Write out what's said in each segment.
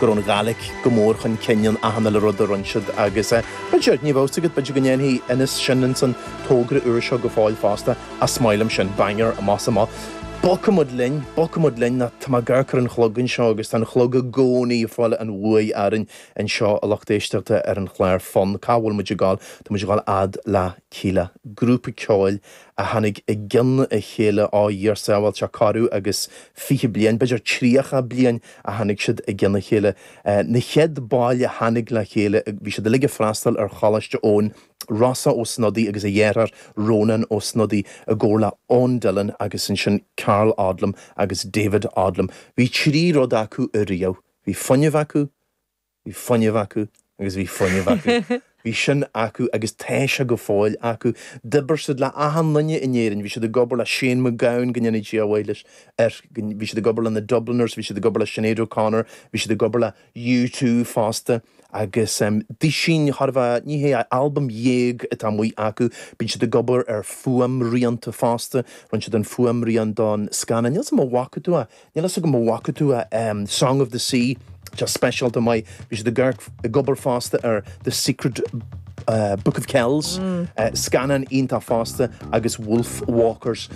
go raibh an Ghaidhlic go mór chun cinn in achan uile rud a rinne siad agus b'fhéidir, ní bheadh 's agat, b'fhéidir go ndéanfaidh Innes sin insan togra úr seo go fóill fosta, a smile ansin, Bangor, más ea, ach bogfaimid linn, bogfaimid linn ná tá mé gar chuig an chlog anseo agus tá an chlog i gcónaí ag fáil an bhuaidh orainn anseo a lucht éisteachta ar an chlár Fonn cá bhfuil muid ag dul, tá muid ag dul fhad le Kíla, grúpa ceoil a. a tháinig i gcionn a chéile ó a Dhia ár sábháil, tá corradh agus fiche bliain, b'fhéidir tríocha bliain a tháinig siad i gcionn a chéile. Na chéad baill a tháinig le chéile, bhí siad uilig ag freastal ar Choláiste Eoin, Rossa Ó Snodaigh agus a dheartháir Rónán Ó Snodaigh i gcomhar le Eoin Dillon agus ansin Karl Odlum agus David Odlum. Bhí trí rud acu ariamh, bhí fuinneamh acu, Bhí fuinneamh acu agus bhí fuinneamh acu. Bhí sin acu agus tá sé go fóill acu. D'oibir siad le achan nduine in Éirinn. Bhí siad ag obair le Shane MacGowan, go ndéanaí Dia a mhaith air, bhí siad ag obair le na Dubliners, bhí siad ag obair le Sinéad O'Connor, bhí siad ag obair le U2 fosta agus em duisín, tarbha naoi gcinn de, albam dhéag atá amuigh acu. Bíonn siad ag obair ar fhuaimrianta fosta, rinne siad an fuaimrian don scannán, níl 's agam a' bhfaca tú é, Níl a fhios agam an bhfaca tú Song of the Sea, tá sé speisialta maith, bhí siad ag obair fosta ar The Secret Book of Kells, scannán iontach fosta agus Wolfwalkers.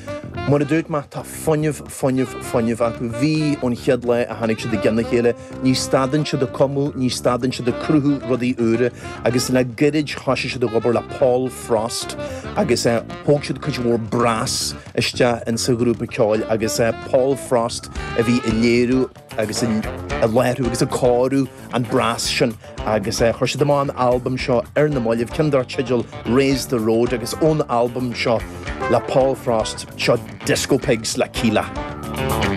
Mar a dúirt mé, tá fuinneamh, fuinneamh, fuinneamh acu. Bhí, ón chéad lá a tháinig siad i gcionn a chéile. Ní stadann siad ag cumadh, ní stadann siad ag cruthú rudaí úra agus le gairid thosaigh siad ag obair le Paul Frost agus thóg siad cuid mhór brass, isteach insa ghrúpa ceoil agus Paul Frost a bhí ag léiriú agus ag láithriú agus ag cóiriú an brass sin agus chuir siad amach an albam seo ar na mallaibh, ceann darb teideal Raise The Road agus ón albam seo le Paul Frost, seo Disco Pigs le Kíla.